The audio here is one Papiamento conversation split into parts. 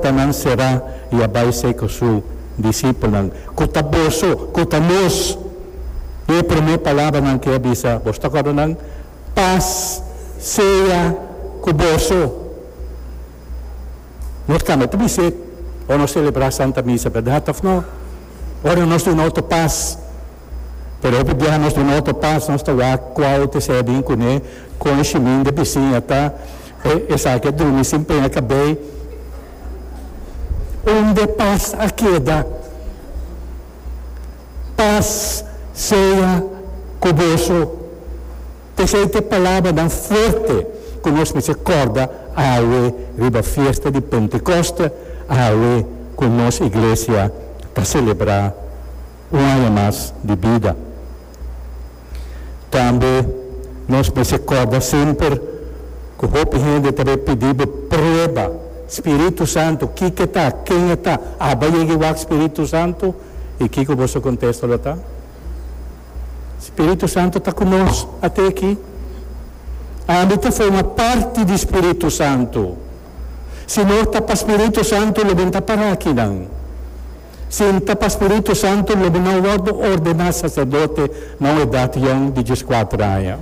Ta nan será i a bai sei ku su disipelnan, Ku ta boso? Ku ta nos? I e promé palabranan ke a bisa, Bos ta kòrda nan? Pas sea ku boso! Nos kamba ta bis'é ora nos selebrá Santa Misa, bèrdat òf nò? Ora nos duna otro pas. Pero hopi biaha nos duna otro pas, nos ta wak kua hopi ser bin kuné, kon shimin di bisiña ta. E esaki a drumi sin pena cabey. Unde paz a keda? Paz sea cu boso. P'esey t'e palabranan fuerte cu nos mester corda awe riba fiesta di Pentecoste, awe cu nos Iglesia ta celebra un aña mas di bida. Tambe nos mester corda semper cu hopi hende ta bay pidi bo prueba spiritu santo, kiko ta, ken e ta, aba yega i wak spiritu santo? Y kiko bo su contesto lo ta? Spiritu santo ta cu nos ate aki. Ami ta forma parti di spiritu santo. Si no ta pa spiritu santo lo ben ta para akinan. Si ta pa spiritu santu lo bo na wòrdu ordená saserdote na un edat yòn di dies kuater aña.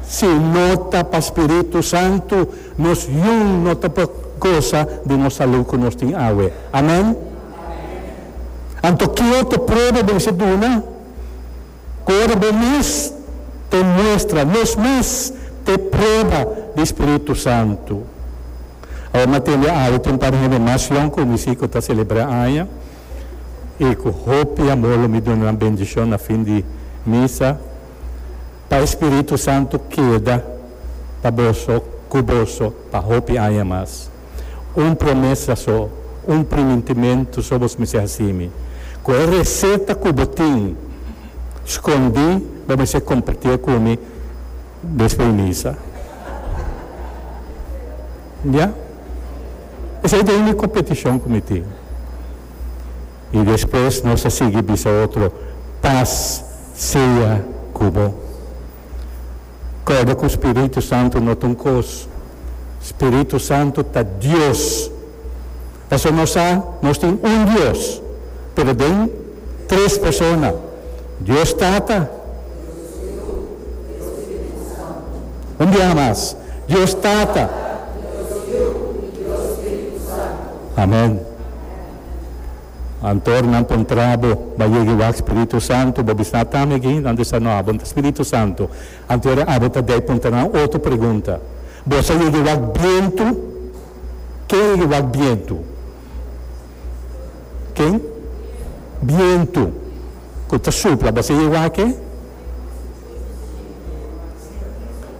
Si no ta pa spiritu santu, nos yun no ta por gosa di nos salú ku nos tin awe. Amèn? Anto, ki otro prueba bo mester duna? Kor bo mes te muestra, nos mes te prueba di Spiritu Santu. Awor m'a tende awe ta un par di hende mas long ku mi si ku ta selebrá aña i ku hopi amor lo mi duna nan bendishon na fin di misa pa e Spiritu Santu keda pa boso, ku boso pa hopi aña mas. un promesa so, un primintimentu so bos mester hasi mi. Ku e reseta ku bo tin skondí bo mester kompartié ku mi despues di misa. Ya. Esei ta unda ku petishon ku mi tin. I despues nos a sigui bisa otro, Pas sea ku bo. Koda ku spiritu santu no ta un kos. Spiritu santu ta Dios. Pasobra nos sa nos tin un Dios, pero den tres persona, Dios Tata, un biaha mas, Dios Tata, Amen. Antor nan por ntra bo ba yegi wak Spiritu Santu, bo bisná tami aki hindan di Sanoa, bo nta Spiritu Santu. Antor e abo ta dei punta nan otro pregunta, Boso a yegi wak bientu? Ken a yegi wak bientu? Ken? Bientu ku ta supla. Boso a yegi wak ke?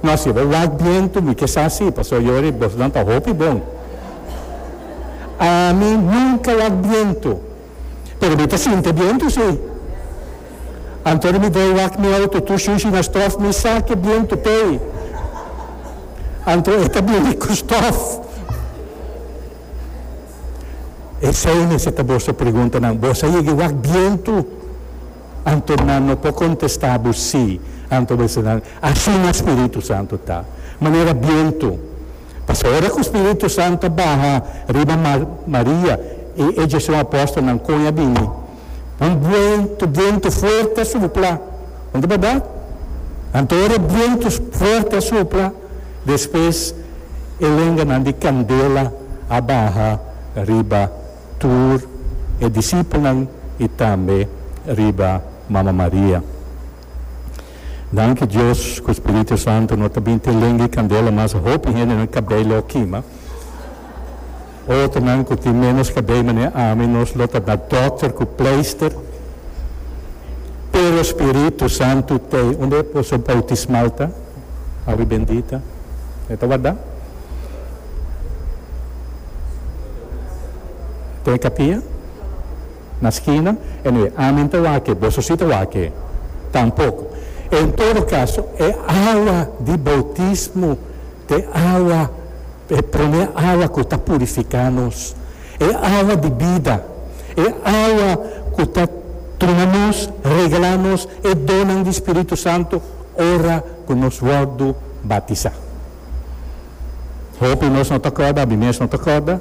No, si bo wak bien tu mi ke sa si, pasobra yo hopi bosonan ta hopi bon. Ami nunka wak bien tu, pero mi ta sinti bien tu si. Anto di mi dei wak mi outo tur shushi na stof mi saki e bien tu pei. Anto e ta bini ku stof. Esei mester ta boso preguntanan, Boso a yega wak bien tu? Anto nan no por contesta bo si, anto bo esei nan, Asina Spiritu Santo ta. Manera bientu. Pasobra ora cu Spiritu Santo a baha riba Maria y e dj'e su apostelnan con e a bini, un bientu, bientu fuerte a supla. No ta berdad? Anto ora e bientu fuerte a supla, despues e lenganan di candela a baha riba. tur e disipelnan i tambe riba Mama Maria. Danki Dios ku spiritu santu no ta bin te lengui i kandela mas hopi hendenan kabei lo kima. Otronan ku tin menos kabei manera ami nos lo ta na dokter ku pleister. Pero spiritu santu t'ei unda e poso boutismal ta? Awi bendita. E ta warda. Te kapia? Na skina? Anyway, ami nta wak e, boso si ta wak e. Tampoko. En todo kaso, e awa di boutismo ta e awa, e promé awa ku ta purifiká nos. E awa di bida. E awa ku ta tuma nos, regalá nos e donnan di spiritu santu. ora ku nos wòrdu batisá. Hopi nos no ta kòrda, mi mes no ta kòrda.